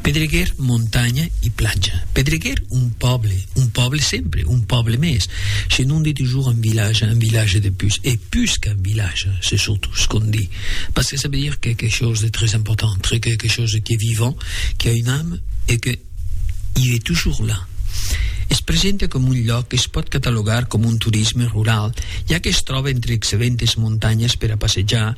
Pedreguer, montanha e platja. Pedreguer, un pòble, un pòble sempre, un pòble mès. Se non di tujor un vilatge, un vilatge de pus, e pus qu'un vilatge, se surtout se qu'on di, parce que ça veut dire quelque chose de très important, très quelque chose qui est vivant, qui a une âme e que i es tujor là. Es presenta coma un lloc que se pòt catalogar coma un turisme rural, ja que es tròba entre excelentes montanhas per a passejar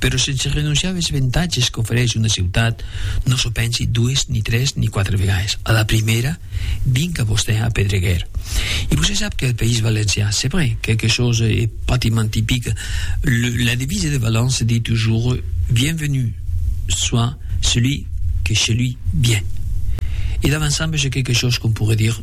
Però sense renonciar als avantatges qu'ofereix una ciutat, non s'o pensi dues, ni tres, ni quatre vegades. A la primèra, vinc a vostè a Pedreguer. E vostè sap que al País Valencià, c'est vrai, quelque chose e pratiquement typique, le, la devise de Valence se dit toujours Bienvenu soit celui que chez lui vient. E davançamb ce quelque chose qu'on pourrait dire,